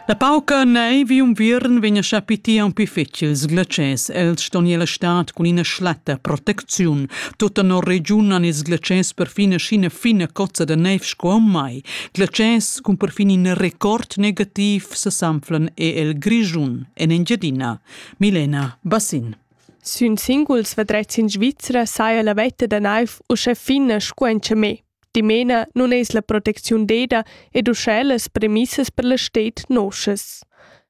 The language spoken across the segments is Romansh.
La pauca neiv un viern vegn a chapiti aunc pli fetgil sglatschès. Els ston ir la stad cun ina schlatta protecziun. Tutta no regiun han ils glatschès perfin sc'ina fina cozza da neiv sco mai. Glatschès cun perfin in record negativ sesanflan e el Grischun en Engiadina. Milena Bassin. Sün singuls vadrets in Svizra saja la vetta da naiv uschè fina sco en me. Dimena nun es la protecziun deda ed uschè las premissas per la sted noschas.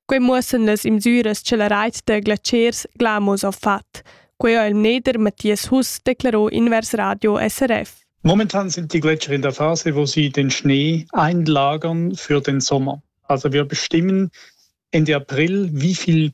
Quai muossan las imsüras cha la rait da glatschers Glamos ha fat. Quai ha il mneder Matthias Huss declaro invers Radio SRF. Momentan sind die Gletscher in der Phase, wo sie den Schnee einlagern für den Sommer. Also wir bestimmen Ende April, wie viel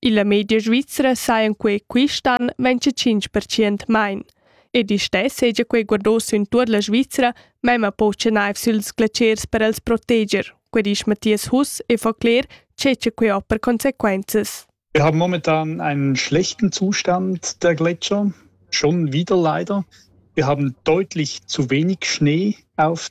Illa media svizra sajan quei quist'an ventg tschinch percent main. Ed istess seja quei guardò sün tuot la Svizra, memma pocha naiv süls glatschers per els proteger, que disch Matthias Huss e fa cler che che quei ho per consequenzas. Wir haben momentan einen schlechten Zustand der Gletscher, schon wieder leider. Wir haben deutlich zu wenig Schnee auf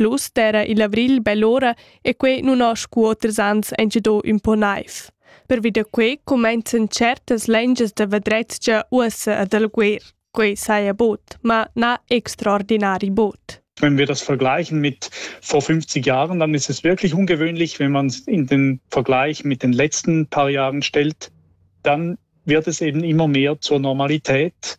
Plus d'era il avrigl bell'ora e quei nun ho scu oters ans engido ün po naiv. Pervi da quei comenzan certas lengias da vadrezia uossa ad alguer. Quei saja bod, ma na extraordinari bod. Wenn wir das vergleichen mit vor 50 Jahren, dann ist es wirklich ungewöhnlich, wenn man es in den Vergleich mit den letzten paar Jahren stellt, dann wird es eben immer mehr zur Normalität.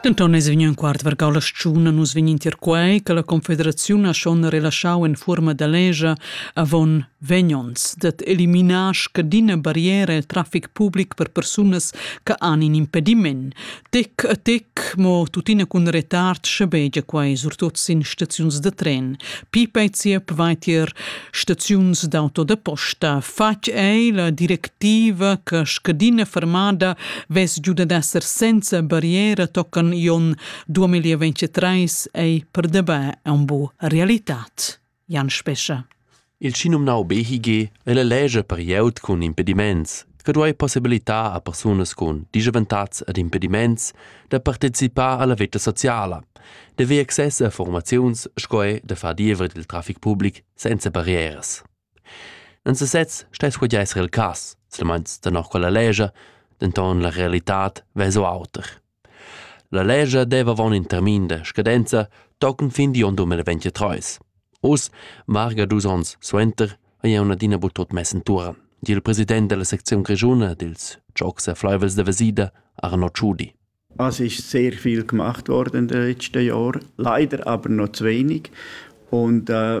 Denton eis vegniu in quart vargau la stgiun a nus vegn intier quei che la Confederaziun ha schon relaschau en fuorma da legia avon vegn onns dat eliminar scadina barriera el traffic public per persunas che han in impediment. Tic a tic, mo tuttina cun retard schabegia quai surtut sin staziuns da tren. Pipei Ziep vai tier staziuns d'auto da posta. Fatg ei la directiva che scadina fermada vess giu ad esser senza barriera tocan Ion 2023 ei per dabei un bu realitat. Jan Spescha. Il schinumnau BHG el elege per glieud cun impediments che duei possibilitar a persunas cun dischavantatgs ed impediments da participar alla veta sociala, de ver access a formaziuns sco ei da far diever dil traffic public senza barrieras. Non se sez stess quei esser il cass, silmeins tenor quella lege, denton la realitad vess auter. La lescha deva avon in termin da scadenza tochen fin digl onn 2023. Oz, varga dus onns suenter, ei jeu adina buc tut mess entuorn, di il president dalla secziun grischuna dils giocs e fleivels da Vesida, Arno Tschudi. Es ist sehr viel gemacht worden in den letzten Jahren, leider aber noch zu wenig. Und äh,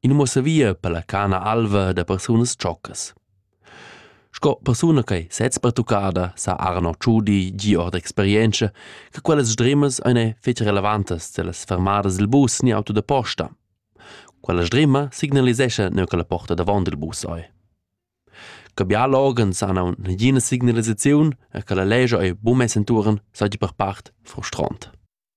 in muossavia per la cana alva da persunas tschoccas. Sco persuna che sez pertuccada sa Arno Tschudi gi ord experienza che quellas sdrimas ein fetg relevantas dellas fermadas dil bus ni auto da posta. Quella sdrima signalisescha neu che la porta davon dil bus ei. Che bial organs han aunc nagina signalisaziun e che la legia ei buca mess entuorn, seigi per part frustront.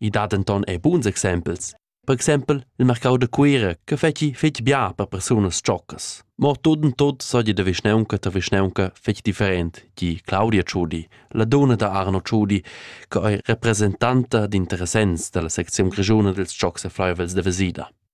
I dat denton er buns exempels. Per exempel il marcau da Cuira che fetschi fetg bia per persunas tschoccas. Mo tut en tut seigi da vischnaunca ta vischnaunca fetg different, di Claudia Ciudi, la dona da Arno Ciudi, che ei representanta d'interessents dalla secziun grischuna dils tschocs e fleiuvels da Vesida.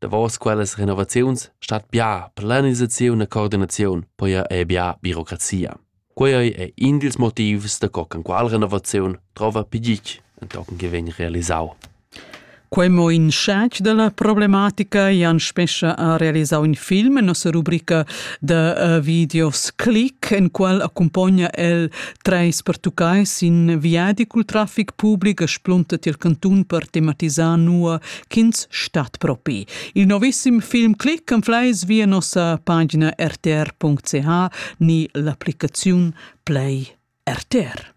davos quellas renovaziuns stat bia planisaziun e coordinaziun poi e bia birocrazia. Quei è in dils motivs da co can qual renovaziun trova pigit entochen che vegn realisau. Quei mo in scec della problematica Jan Spescha ha realisau in film en nossa rubrica da uh, videos Click en qual accompagna el treis pertuccai sin viadi cul traffic public e splunta tiel cantun per tematisar nua ch'ins stat propi. Il novissim film Click enfleis via nossa pagina rtr.ch ni l'applicaziun Play RTR.